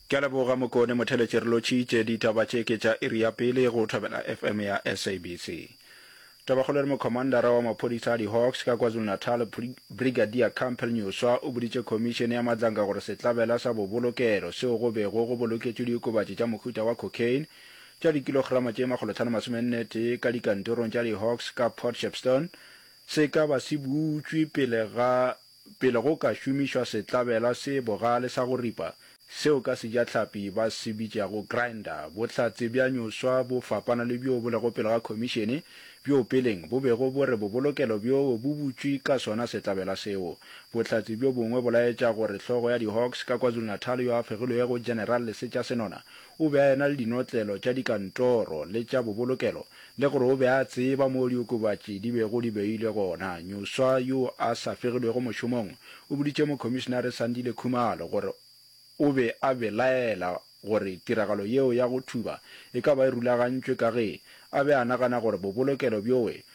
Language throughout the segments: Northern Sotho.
Ke a leboga Mokone Motheletše re lotšitše ditaba tše ke tša iri ya pele go Thobela FM ya SABC. Tabakgolo e re Mokhomandara wa maphodisa a di-Hawks ka KwaZulu-Natal Brigadier Campbell Nyuswa o boditše Khomišene ya Matlanka gore sehlabela sa bobolokelo seo go bego go boloketšwe diokobatši tša mohuta wa cocaine tša dikilograma tše makgolo tlhano masome nne tee ka dikantorong tša di-Hawks ka Port Shepstone se ka ba se butšwe pele ga Pele go ka šomišwa setlabela se bogale sa go ripa, seo ka sejatlhapi ba se bitšago grinder, bohlatse bja nyoswa bo fapana le bjoo bo lego pele ga Khomišene, bjoo peleng bo bego bo re bobolokelo bjoo bo butšwe ka sona setlabela seo. Bohlatse bjo bongwe bo laetša gore hlogo ya di-Hawks ka KwaZulu-Natal yo a fegilwego, General Lesetša Senona, O be a ena le dinotlelo tša dikantoro le tša bobolokelo le gore o be a tseba moo diokobatši di bego di beilwe gona. Nyuswa yo a sa fegilwego mošomong o boditše Mokhomišinare Sandile Khumalo gore o be a belaela gore tiragalo yeo ya go thuba e ka ba e rulagantšwe ka ge a be a nagana gore bobolokelo bjoe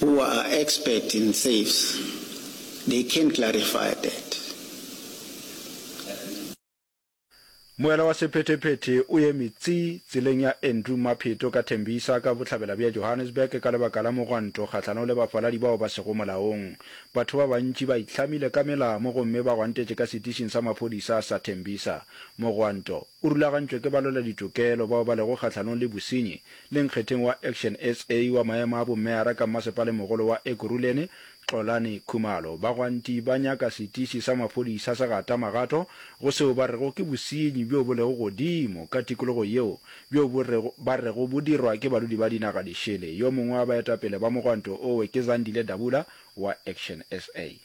who are expert in safes they can clarify that. Moela wa sephetephete o eme tsi tseleng ya Andrew Mapheto ka Tembisa ka bohlabela bja Johannesburg ka lebaka la mogwanto kgahlanong le bafaladi bao ba sego molaong. Batho ba bantši ba itlhamile ka melamo gomme ba gwantetše ka setišing sa maphodisa sa Tembisa. Mogwanto. O rulagantšwe ke balweladitokelo bao ba lego kgahlanong le bosenyi le nkgetheng wa Action sa wa maemo a bommeara ka mmasepalemogolo wa Ekurhuleni, Xolani Khumalo. Bagwanti ba nyaka setiši sa maphodisa sa gata magato go seo ba rego ke bosenyi bjo bo lego godimo ka tikologo yeo bjo bo rego ba rego bo dirwa ke badudi ba dinaga di šele. Yo mongwe wa baetapele ba mogwanto owe ke Zandile Dabula wa Action sa.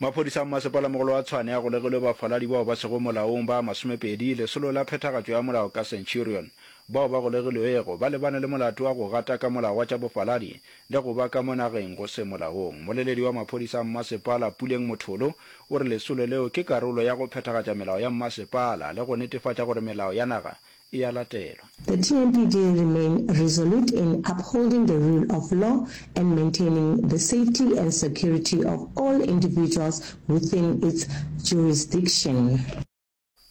Maphodisa a mmasepalamogolo wa Tshwane a golegilwe bafaladi bao ba sego molaong ba masomepedi, lesolo la phethagatšo ya molao ka Centurion. Bao ba golegilwego ba lebane le molato wa go gata ka molao wa tša bofaladi le go ba ka mo nageng go se molaong. Moleledi wa maphodisa a mmasepala, Puleng Motholo, o re lesolo leo ke karolo ya go phethagatša melao ya mmasepala le go netefatša gore melao ya naga e ya latelwa. The TMPD remain resolute in upholding the rule of law and maintaining the safety and security of all individuals within its jurisdiction.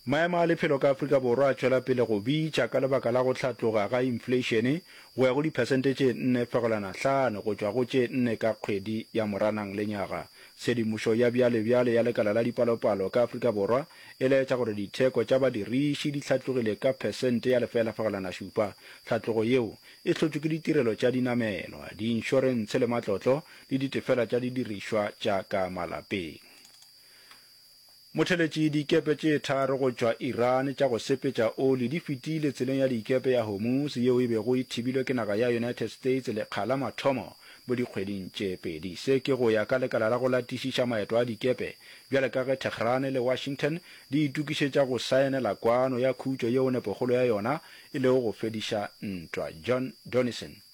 Maemo a lephelo ka Afrika Borwa a tšwela pele go bitša ka lebaka la go hlatloga ga infleišene go ya go diphesente tše nne fegelwana hlano go tšwa go tše nne ka kgwedi ya Moranang lenyaga Tshedimošo ya bjalebjale ya Lekala la Dipalopalo ka Afrika Borwa e laetša gore ditheko tša badiriši di hlatlogile ka phesente ya lefela fegelwana šupa. Tlhatlogo yeo e hlotšwe ke ditirelo tša dinamelwa, diinšorentshe le matlotlo le ditefela tša didirišwa tša ka malapeng. Motheletši, Dikepe tše tharo go tšwa Iran tša go sepetša oli di fetile tseleng ya dikepe ya Hormuz yeo e bego e thibilwe ke naga ya United States lekga la mathomo mo dikgweding tše pedi. Se ke go ya ka lekala la go latišiša maeto a dikepe bjale ka ge Tehran le Washington di itokišetša go saenela kwano ya khutšo yeo nepogolo ya yona e lego go fediša ntwa. John Donison.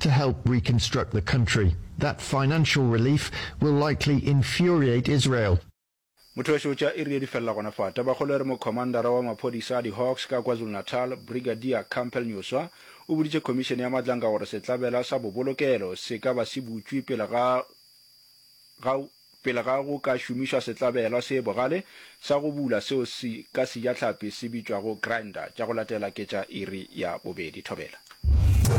to help reconstruct the country. That financial relief will likely infuriate Israel. Mothoweso tša iri ye di felela gona fa. Tabakgolo e re Mokhomandara wa maphodisa a di-Hawks ka KwaZulu-Natal, Brigadier Campbell Nyuswa, o boditše khomišene ya Madlanka gore setlabela sa bobolokelo se ka ba se butšwe pele ga ga pele ga go ka šomišwa setlabelwa se bogale sa go bula seo se ka sejatlhapi se bitšwago grinder tša go latela ke tša iri ya bobedi. Thobela.